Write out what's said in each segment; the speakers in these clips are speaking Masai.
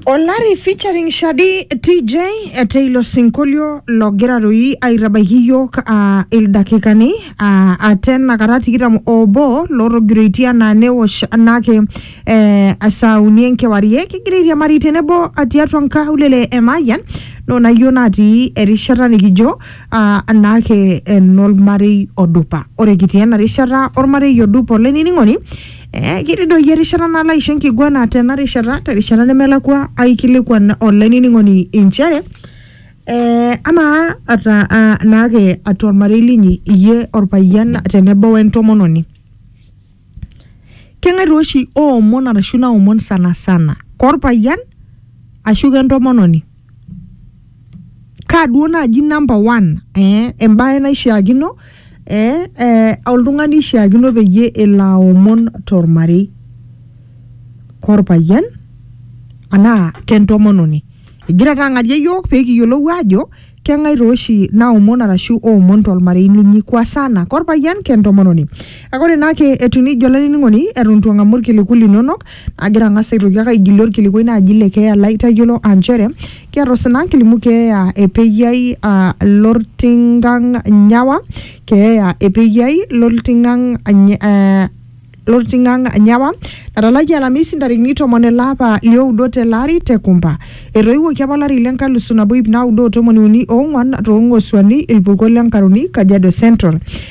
Olari featuring Shadi TJ ete ilo sinkolio logira doi aitabaiki iyiook aa ildakikani aa ate enakata tikitam obo lootogiroitie anaa neosh anake eh, saa uni enkewarie kigira airiamari tenebo tiatua nkaulele e Mayian nona iyiok natii erishata nikijo aa anake enormarei odupa. Ore kitii ena rishata ormarei odupa olainining'oni Eh, kiridoyie erishata nalo aisho enkiguana tena rishata terishata nemelakua aikilikuan olainining'oni inchere eh, amaa ata ah, naake atua ormarei linyi iyie orpayian tenebo wentomononi keng'ae taa oshi oomon arashu naomon sana sana korpayian ashu kentomononi kaa duo naaji number one eh embaye naishiakino eh, eh oltung'ani ishiakino peyie elo aomon tormarei korpayian anaa kentomononi egira taa ang'arie iyiok pekiyiolou aajo keng'ae tooshi naomon arashu oomon tolmarei linyi kwa sana korpayian kentomononi kake ore naake etiu nejia olainining'oni eton itu ang'amu irkiliku linonok Agira ang'as aitoki ake aigilie orkilikuai naaji le keeya lai tayiolo aa nchere kiata osina kilimu keeya e Peyiai aa Lortingang Nyawa, keeya e Peyiai Lortingang Ny- eh, Lortingang Nyawa natalakie Alamisi ntarikini tomon ele apa lioudo tele ari te Kumba. Etoiwuoki apa olari le nkalusu nabo iip naudo o tomoni uni oong'wan too Ng'osuani, Ilpurko le Nkaroni, Kajiado Central.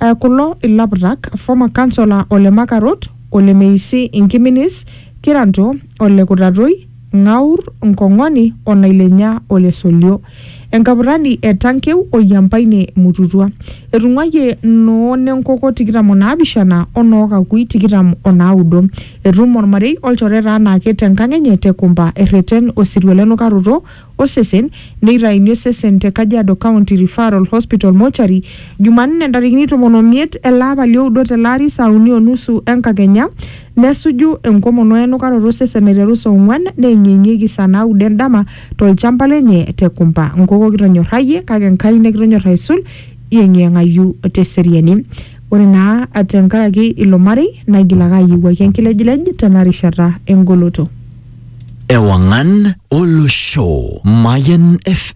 Aa kulo ilaputak, former councilor ole Makarot, ole Meisi Nkiminis, Kiranto, ole Kutatoi, Ng'aur, Nkong'oni o Nailenya ole Solio. Enkaputani e Tankeu o Yiampaine Mututua. Etung'uayie noo Nenkoko tikitam o naapishana o noo Kakui tikitam o naudo. Etum olmarei olchoreta anaake te nkang enye te Kumba erreten osirua le nukaroto osesen neitaini osesen te Kajiado County Referral Hospital Mortuary Jumanne ntarikini tomon o miet ele apa li oudo tele ari saa uni o nusu enkakenya nesuju enkomon o enukaroto osesen aiteru saa ong'uan neeng'ieng'ieki saa naudo endama to lchamba lenye te Kumba. Nkoko kitonyorrayie kake Enkai nikitonyorr aisul yeng'iyeng'ayu te seriani. Ore naa te nkaraki ilo marei naigil ake ayiewuaki enkilejilej tena rishata e ngoloto. Ewangan Olosho Mayan FM